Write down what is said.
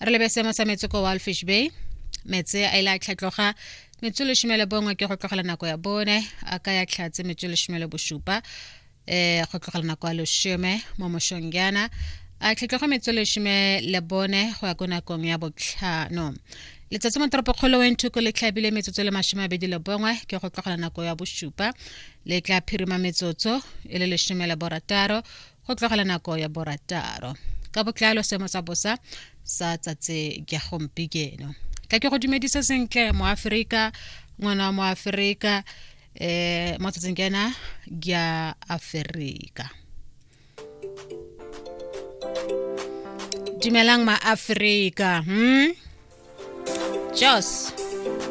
re lebe seemo sa metsi ko walfish bay metse a ile a tlhatloga metso leshome bongwe ke go tlogela nako ya bone a ka ya tlhatse metso leshome le bosupa um go tlogela nako ya leshome mo moshong jaana a tlhatloga metso leshome le bone go ya ko nakong ya botlhano letsatsi mo toropokgolo wenthoko le tlhabile metsotso le masome abedi le bongwe ke go tlogela nako ya bosupa le tla phirima metsotso e le lesome le borataro go tlogela nako ya borataro ka botlalo seemo sa bosa sa tsatse ja gompikeno ka ke go dumedisa sentle mo aferika ngwana mo aferika eh mo tsatseng ke ena ya aferika dumelang ma aferika hmm jos